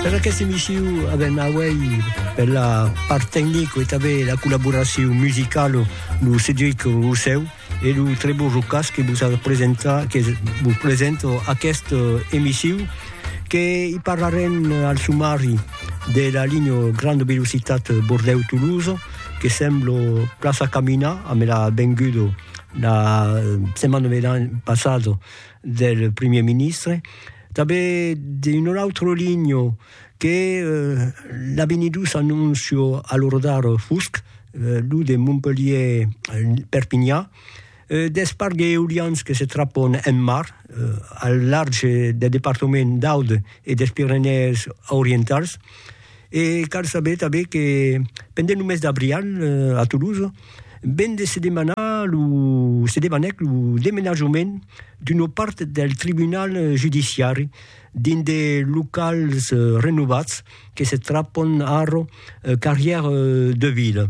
Per aquesta emissió avem auèi per la part tecnic e tanben la collaboracion musicala lo Cedric Rossèu e lo Trevor Rocas que vos a presentar que vos presenta aquesta emissió que i parlarem al sumari de la linha grande velocitat Bordèu-Toulouse que sembla plaça caminar amb la venguda la setmana passada del Premier Ministre Tanben d'un autre ligno que l'a benidus annuncio a l'ordar fusc, lo de Montpelhier-Perpignan, deth parc d'eolians que se trapon en mar al large deth departament d'Aude e des Pirenèes Orientals, E cal saber tanben que pendent lo mes d'abrial a Toulouse ven de se demanar lo se demanèc lo demenajament d'una part del tribunal judiciari dins de locals renovats que se trapon ara carrièr de vila.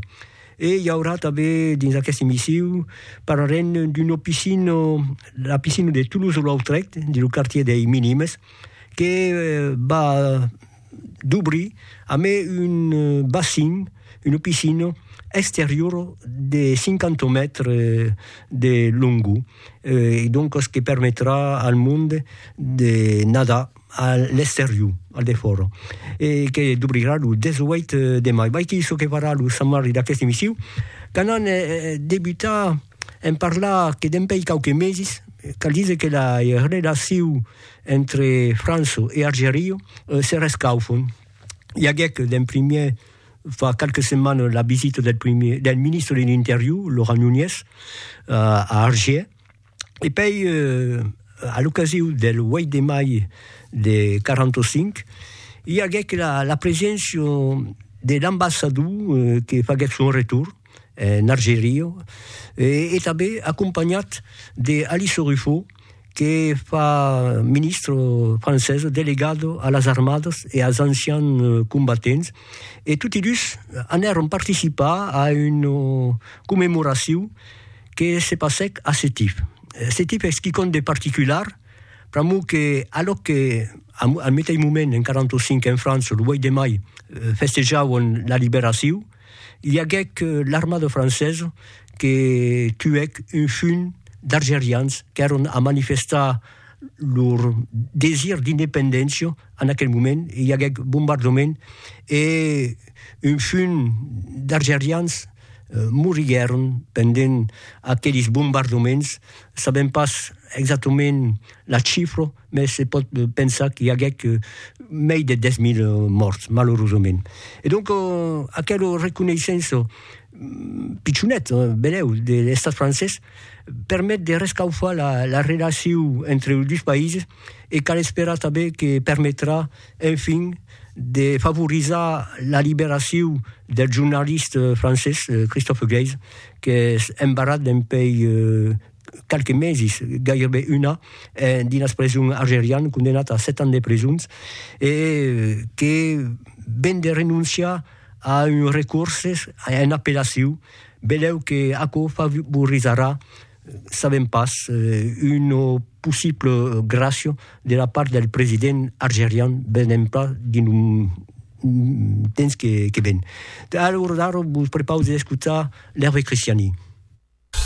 E i aurà tanben dins aqueste emissiu parlarem d'una piscina, la piscina de Toulouse-Lautrec dins lo quartier dei Minimes que va dubrir amé un bassin, una piscina exteriora de 50 mètres de longor e doncas que permetrà al monde de nadar a l'exterior, al defòra e que dubrirà lo 18 de mai. Vai que çò que farà lo Sant Marri d'aqueste emissiu, quand an debutat en parlar que dempèi quauques meses, cal díser que la relacion Entre Franço e Argerio se rescaufon. I aguèc d'en primièr fa qualques setmanas la visita del primièr, del ministre de l'Interior, Laurent Nunez, a Argier, e pei a l'ocasiu del 8 de mai de 45 i aguèc la preséncia de l'ambassador que faguèc son retorn, en Argeria, e tanben acompanhat de Alice Ruffo, que fa ministre francesa delegado a las armadas e als ancians combatents, e toti dus anèron participar a una commemoracion que se passèc a Sétif. Sétif es quicòm de particular, pr'amor que alòc que al meteis moment en 45 en França, lo 8 de mai, festejavan la liberacion, I aguec l'armada francesa que tuèc un junh d'argerians qu'èron a manifestar lor desir d'independéncia en aquel moment, i aguec bombardament e un junh d'argerians moriguèron pendent aquelis bombardaments, sabèm pas exactament la chifra. mès se pòt pensar qu'i aguèc mei de 10.000 mòrts, malorosament. E donc, aquelo reconeissenço pichonet, benèu, de l'Estat francés permet de rescaufar la relacion entre los dus païses e cal esperar tanben que permetrà, enfin, de favorizar la liberacion del jornalist francés Christophe Geisz, qu'es embarrat dempuèi qualques meses, gaireben un an, dins preson algerian, condemnat a 7 ans de presons, e que ven de renonciar a un recurses, a un apelaciu, beleu que aquò favorizarà, sabem pas, una possible gràcia de la part del president algerian, venem pas dins lo temps que ven. Alòs ara vos prepaus d'escotar l'Hervé Christiani.